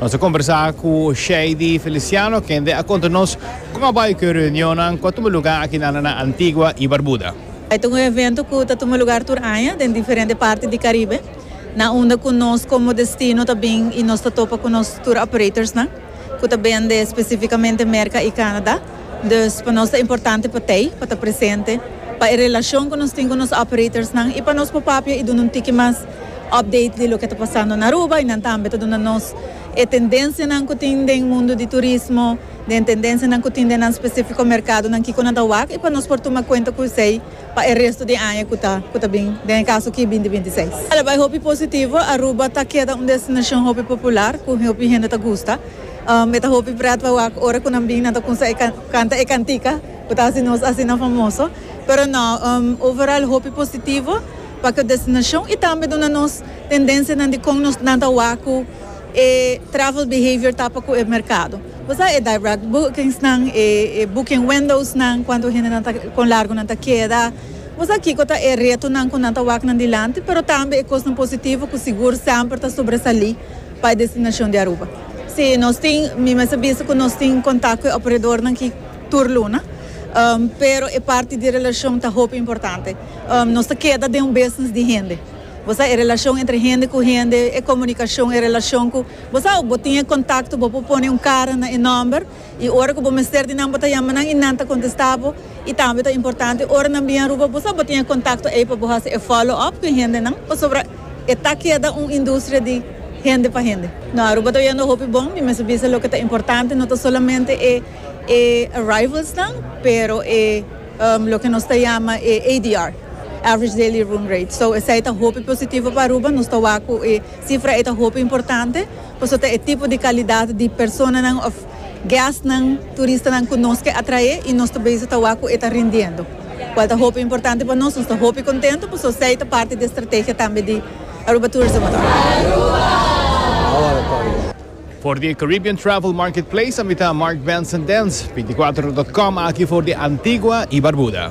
Nos a kombersá ku Shady Feliciano kende a konta nos kon a bai ku e reunionnan ku a tuma lugá akinanda na Antigua i Barbuda. E ta un evento ku ta tuma lugá tur aña den diferente parti di Karibe, na unda ku nos komo destino ta bin i nos ta topa ku nos tur operators nan ku ta bende spesifikamente Merka i Kanada. Dus pa nos ta importante pa Tei pa ta presente pa e relacion cu nos tin cu nos operatorsnan y pa nos por papia y duna un tiki mas update di loke ta pasando na Aruba y nan tambe ta duna nos e tendencianan cu tin den mundo di turismo, den tendencianan cu tin den nan specifico mercadonan kico nan ta wak y pa nos por tuma cuenta cu esey pa e resto di e aña cu ta cu ta bin, den e caso aki binti binti seis. Ala bay hopi positivo, Aruba ta keda un destinacion hopi popular cu hopi hende ta gusta. Me ta hopi pret pa wak ora cu nan bin nan ta cunsha e canta e cantica cu ta haci nos asina famoso. Pero no, overall hopi positivo pa cu destinacion y tambe duna nos tendencianan di con nos nan ta wak cu e travel behavior ta pa cu e mercado. Bo sa e direct bookingsnan, e booking windowsnan, cuanto hendenan ta, con largo nan ta keda. Bo sa kico ta e retonan cu nan ta wak nan dilanti, pero tambe e cosnan positivo cu sigur semper ta sobresali. Pa e destinacion di Aruba. Si, nos tin, mi mester bisa cu nos tin contact cu e operadornan aki tur luna, pero e parti di relacion ta hopi importante. Nos ta keda den un business di hende, bo sa, e relacion entre hende cu hende, e comunicacion, e relacion cu, bo sa, bo tin e contacto, bo por pone un cara na e nomber. I ora ku bo mester di nan bo ta yama nan i nan ta kontestá bo. I tambe ta importante ora nan bin Aruba bo sa bo tin e kontakto ei pa bo hasi e follow up ku e hendenan pasobra e ta keda un industria di hende pa hende. No, Aruba ta oyendo hopi bon. Mi mester bisa loke ta importante no ta solamente e e arrivalsnan pero e loke nos ta yama e ADR, Average Daily Room Rate. So esei ta hopi positivo pa Aruba. Nos ta wak ku e sifra ei ta hopi importante. Paso ta e tipo di kalidat di personanan òf gèstnan turistanan ku nos ke atraé i nos ta bezig ta wak ku e ta rindiendo, kual ta hopi importante pa nos. Nos ta hopi kontentu paso esei ta parti di e strategia tambe di Aruba Tourism Authority. For di Caribbean Travel Marketplace a mita Mark Benson Dens, binticuatro dot com, aki for di Antigua i Barbuda.